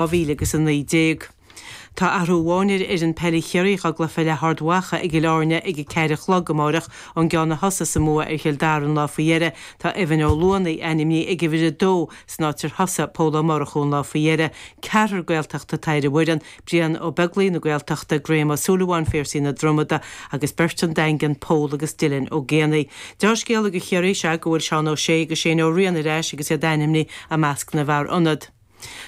2000 agus 19. Tá athrú amháin ar fhoireann peile Chiarraí dhá gcluiche le hArd Mhacha i gCill Airne ag a ceathair a chlog amáireach. Ón gceann a thosaigh sa mbua ar Chill Dara an lá faoi dheireadh, tá Evan Ó Luanaigh ainmnithe ag uimhir a dó san áit ar thosaigh Pól Ó Murchú an lá faoi dheireadh. Ceathrar Gaeltachta atá ar an bhfoireann, Brian Ó Beaglaoich na Gaeltachta, Graham Ó Súilleabháin Phiarsaigh na Dromada agus beirt ón Daingean, Pól agus Dylan Ó Géibheannaigh. Dea-scéala do Chiarraí is ea go bhfuil Seán Ó Sé agus Shane Ó Riain ar ais agus iad ainmnithe i measc na bhfear ionad.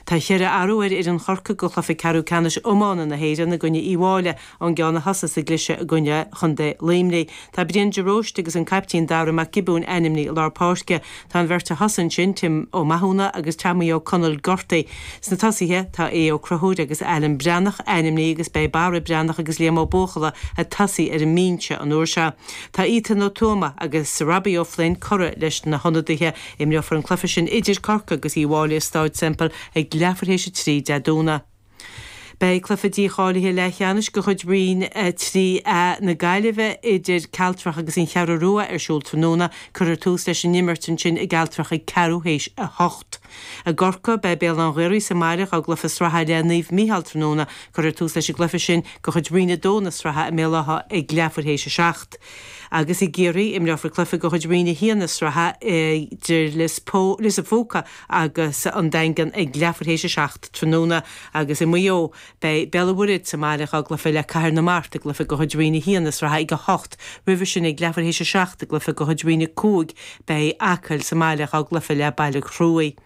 Tá cheithre athrú ar fhoireann Chorcaí do chluiche ceathrú ceannais iomána na hÉireann i gcoinne Uíbh Fhailí ón gceann a thosaigh sa gcliseadh i gcoinne chontae Luimnigh. Tá Brian de Róiste agus an caiptín Darragh Mac Giobúin ainmnithe i lár páirce. Tá an bheirt a thosaigh ansin, Tim Ó Mathúna agus Teaimí Ó Conaill gortaithe. Sna tosaithe tá Aodh Ó Conchúir agus Ailean Breathnach ainmnithe agus beidh Barra Breathnach agus Liam Ó Buachalla ag tosaí ar an mbinse an uair seo. Tá Ethan Ó Tuama agus Robbie Ó Floinn curtha leis na hionadaithe Imreofar an cluiche sin idir Corcaigh agus Uíbh Fhailí i Stáid Semple ag leathuair théis a trí Dé Domhnaigh. Beidh cluiche dícháilithe leathcheannais de chuid Roinn 3A na Gaillimhe idir Cealtrach agus An Cheathrú Rua ar siúl tráthnóna. Cuirfear tús leis an imirt ansin i gCealtrach ag ceathrú théis a hocht. I gCorcaigh, beidh Béal Átha an Ghaorthaidh sa mbaile dhá gcluiche sraithe le Naomh Micheál tráthnóna. Cuirfear tús leis an gcluiche sin de chuid Roinn 2 na sraithe i mBéal Átha ag leathuair théis a seacht. Agus i gCiarraí, imreofar cluiche de chuid Roinn 1 na sraithe idir Lios an Phúca agus an Daingean ag leathuair théis a seacht tráthnóna. Agus i Maigh Eo, beidh Béal an Mhuirthead sa mbaile dhá gcluiche le Cathair na Mart i gcluiche de chuid Roinn 1 na sraithe ag a hocht. Roimhe sin ag leathuair théis a seacht i gcluiche de chuid Roinn 5, beidh Acaill sa mbaile dhá gcluiche le Baile Chruaich.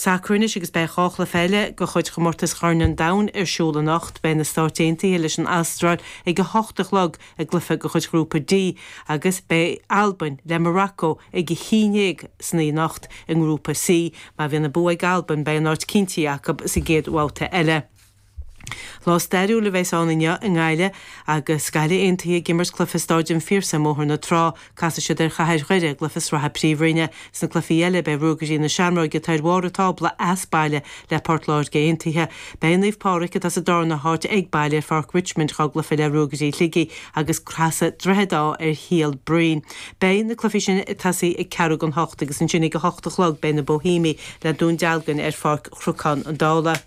Sacar anois agus beidh dhá chluiche eile de chuid chomórtas Chorn an Domhain ar siúl anocht. Beidh na Stáit Aontaithe leis an Astráil ag a hocht a chlog i gcluiche de chuid Ghrúpa D agus beidh Albain le Morocco ag a haon déag san oíche anocht. I nGrúpa C, má bhíonn an bua ag Albain beidh an áit cinntithe acu sa gcéad bhabhta eile. Lá stairiúil a bheas ann inniu i nGaillimh agus Gaillimh Aontaithe ag imirt cluiche i Stáid an Phiarsaigh i mBóthar na Trá. Casfaidh siad ar Chathair Dhoire i gcluiche sraithe Príomhroinne. Sna cluichí eile beidh Ruagairí na Seamróige atá ar bharr an tábla as baile le Port Láirge Aontaithe. Beidh Naomh Pádraig atá sa darna háit ag baile ar Pháirc Richmond dhá gcluiche le Ruagairí Shligigh agus casfaidh Droichead Átha ar Shíol Bhroin. Beidh na cluichí sin ag tosaí ag ceathrú don hocht agus ansin ag a hocht a chlog beidh na Boihéamaigh le Dún Dealgain ar Pháirc Chnocán Uí Dhálaigh.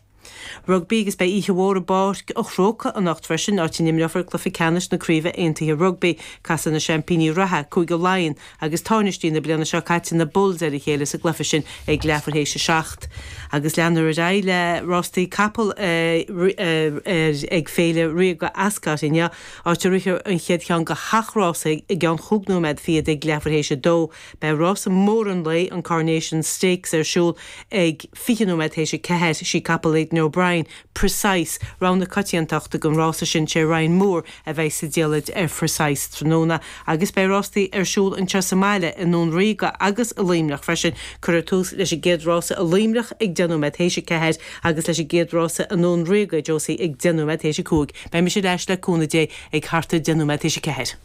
Rugbaí agus beidh oíche mhór i bPáirc an Chrócaigh anocht freisin, áit a n-imreofar cluiche ceannais na Craoibhe Aontaithe Rugbaí. Casfaidh na seaimpíní reatha, Cúige Laighean, agus táinistí na bliana seo caite, na Bulls, ar a chéile sa gcluiche sin ag leathuair théis a seacht. Agus leanfar ar aghaidh le rástaí capall ag Féile Ríoga Ascot inniu, áit a rithfear an chéad cheann de sheacht rása i gceann chúig nóiméad fichead ag leathuair théis a dó. Beidh rása mór an lae, an Coronation Stakes, ar siúl ag. 20 nóiméad théis a ceathair, sí capall Aidan O'Brien, Precise, rogha na coitiantachta don rása sin, sé Ryan Moore a bheidh sa diallait ar Precise tráthnóna agus beidh rástaí ar siúl anseo sa mbaile, i nDún Ríoga agus i Luimneach freisin. Cuirfear tús leis an gcéad rása i Luimneach ag deich nóiméad théis a ceathair agus leis an gcéad rása i nDún Ríoga, Josie, ag deich nóiméad théis a cúig. Beidh mise ar ais, le cúnamh Dé, ag thart ar deich nóiméad théis a ceathair.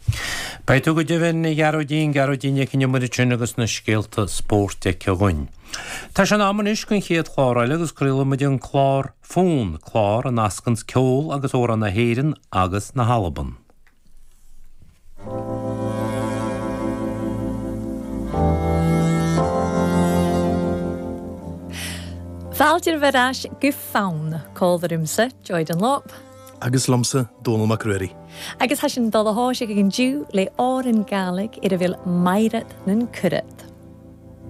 Beidh tú go deimhin, a Ghearóidín, Gearóidín Nic an Iomaire sin agus na scéalta spóirt aici againn. Tá sé in am anois don chéad chlár eile agus craolfaidh muid an clár Fonn, clár a nascanns ceol agus amhráin na hÉireann agus na hAlban. Fàilte oirbh air ais gu Fonn, còmhla riumsa, Joy Dunlop. Agus liomsa, Dónal Mac Ruairí. Agus tha sinn dol a thòiseachadh an-diugh le òran Gàidhlig air a bheil Mairead nan Cuiread.